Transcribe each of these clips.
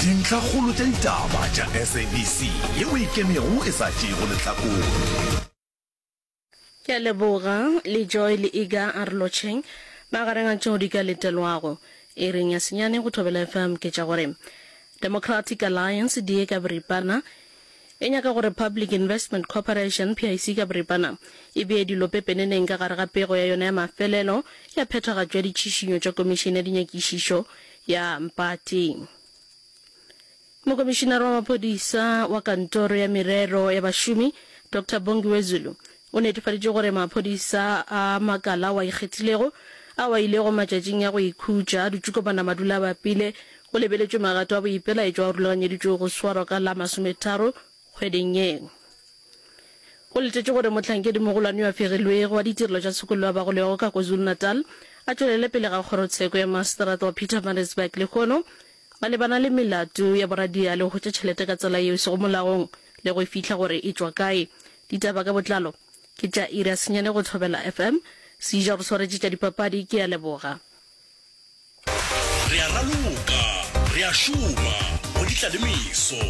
Dintlhakgolo tša ditaba tša SABC yeo e kemego e sa tšeego lehlakore. Ke a leboga le Joy le Iga Arlocheng. Magareng a tšeo di ka letelwago iring ya senyane go Thobela FM ke tša gore Democratic Alliance di ye ka boripana, e nyaka gore Public Investment Corporation, PIC ka boripana, e bee dilo pepeneneng ka gare ga pego ya yona ya mafelelo ya phethagatšo ya ditšhišinyo tša Komišene ya Dinyakišišo ya Mpati. Mokomišinare wa Maphodisa wa Kantoro ya Merero ya Bašomi, Doctor Bongiwe Zulu, O netefaditše gore maphodisa a makala ao a ikgethilego ao a ilego matšatšing a go ikhutša a dutše kopana madulabapile, go lebeletšwe magato a boipelaetšo ao rulaganyeditšwego go swarwa ka la masometharo kgweding ye. O letetše gore mohlankedi-mogolwane yo a fegilwego wa ditirelo tša tshokollo wa bagolego ka KwaZulu-Natal a tšwelele pele ga kgorotsheko ya maseterata wa Pietermaritzburg lehono ba lebana le melato ya boradiale go hwetša tšhelete ka tsela yeo e sego molaong le go e fihla gore e tšwa kae Ditaba ka botlalo ke tša Ira Senyane go Thobela FM, Seija go swaretše tša dipapadi, ke a leboga. Re a raloka, re a šoma go ditlalemiso,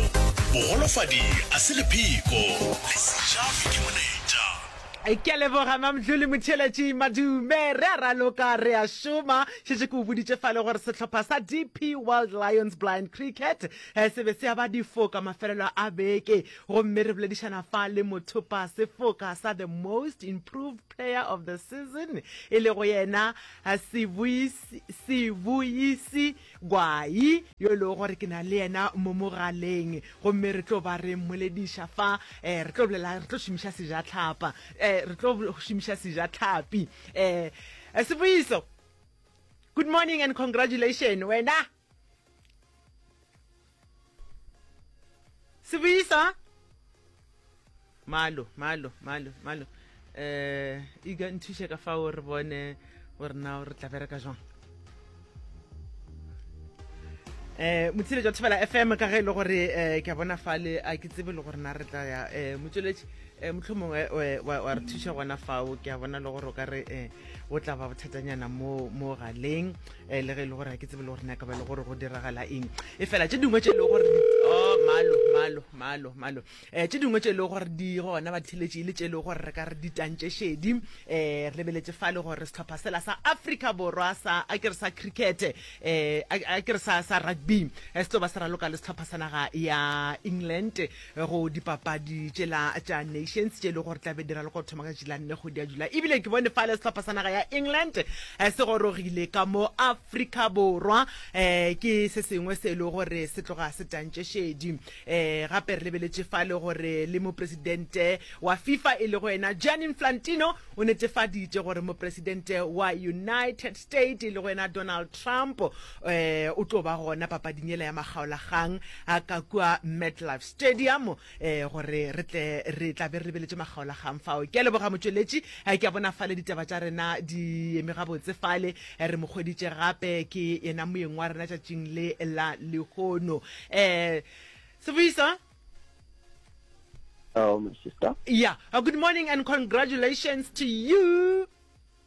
bogolofadi a se lepheko, le Sejavi ke moneja. Ke a leboga Mamdluli Motšheletši Madume. Re a raloka, re a šoma. Šetše ke o boditše fale gore sehlopha sa DP World Lions Blind Cricket se be se aba difoka mafelelo a beke Gomme re boledišana fa le mothopa sefoka sa the most improved player of the season e lego yena Sibuisi Gwai yo e lego gore ke na le yena mo mogaleng gomme re tlo ba re mmolediša fa um re tlo bolela re tlo šomiša sejatlhapa um re tlo šomiša sejatlhapi um Sibuiso good morning and congratulation wena Sebuyisa. Malo, malo, malo, malo. Eh, iga nthuše ka fao re bone gore na o re tla bereka jwang. Eh, motshile jwa thibela FM ka ge e le gore eh ke a bona fale a ke tsebe le gore na re tla ya eh motsweletši eh motlhomongwe eh, wa wa re thuša gona fao ke a bona le gore o ka re eh o tla ba bothatanyana mo mo galeng um le ge e le gore ga ke tsebe le gore naka ba le gore go diragala eng e fela tse dingwe tse e le gore oh, malo malo malo malo um tse dingwe tse e le gore di gona ba ditheletše e le tse e le gore re ka re ditantše šedi um re lebeletse fa le gore setlhopha sela sa africa borwa sa a ke re sa cricket um a ke re sa rugby se tlo ba se raloka le setlhopha sa naga ya england go dipapadi tšela tša nations tše e le gore tla be dira le go thoma ka tšela nne kgwedi ya jula ebile ke bone fale sehlopha sa naga ya england eh, se gorogile ka mo afrika borwa um ke se sengwe se e le gore se tloga se tantše šedi um gape re lebeletše fale gore le mopresidente wa fifa e le go ena jan inflantino o netefaditše gore mopresidente wa united states e le go ena donald trump um o tlo ba gona papading ela ya makgaolagang a ka kua MetLife Stadium e gore re tle re tla be re beletše makgaolagang fao. Ke a leboga motšweletši, ke a bona fale ditaba tša rena di eme gabotse fale, re mo hweditše gape ke yena moyeng wa rena tšatšing le la lehono. Eh, Sebuisa? Hello, my sister. Yeah, uh, good morning and congratulations to you.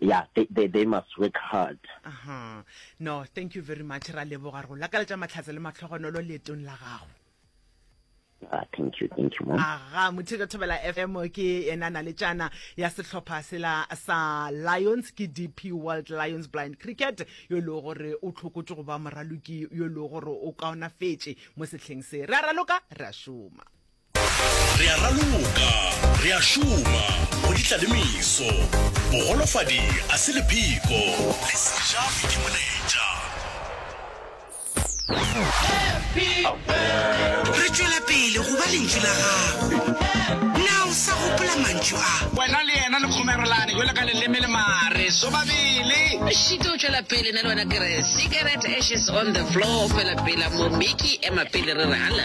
ya they, they, they must work hard aha no thank you very much ra leboga re go lakaletša matlhatse le matlhogonolo leetong la gago Ah, thank you, thank you, mom. aga motheto thobela fm ke ena na le tšana ya sehlopha sela sa lions ke dp world lions blind cricket yo e lego gore o tlhokotse go ba moraloki yo e lego gore o kaonafetše mo sehleng se re a raloka re a šoma Re a raloka, re a šoma, go ditla le meso. Bogolofadi a se lephiko, le se ja boitemoletša. Re tšwela pele go ba Lentšu la Gago. Na o sa gopola mantšu a? Wena le yena le kgomerelane bjalo ka leleme le mare, sobabele. Šito o tšwela pele na le wena ke re, cigarette ashes on the floor, fela pela mo Mickey ema pele re re hala.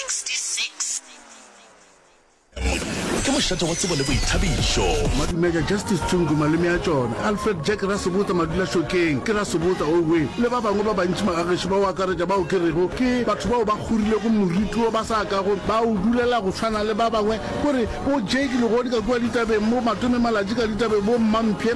66 ke mošate wa tsebo le boithabišo madumeja justice tsungu maleme ya tšona alfred jack rasebota madulašokeng ke rasebota owe le ba bangwe ba bantši magagešo ba o akaretša bao ke rego ke batho bao ba kgorilego moriti wo ba sa kago ba o dulela go tshwana le ba bangwe gore bo jake legodi ka kua ditabeng bo matome malatši ka ditabeng bo mmamphe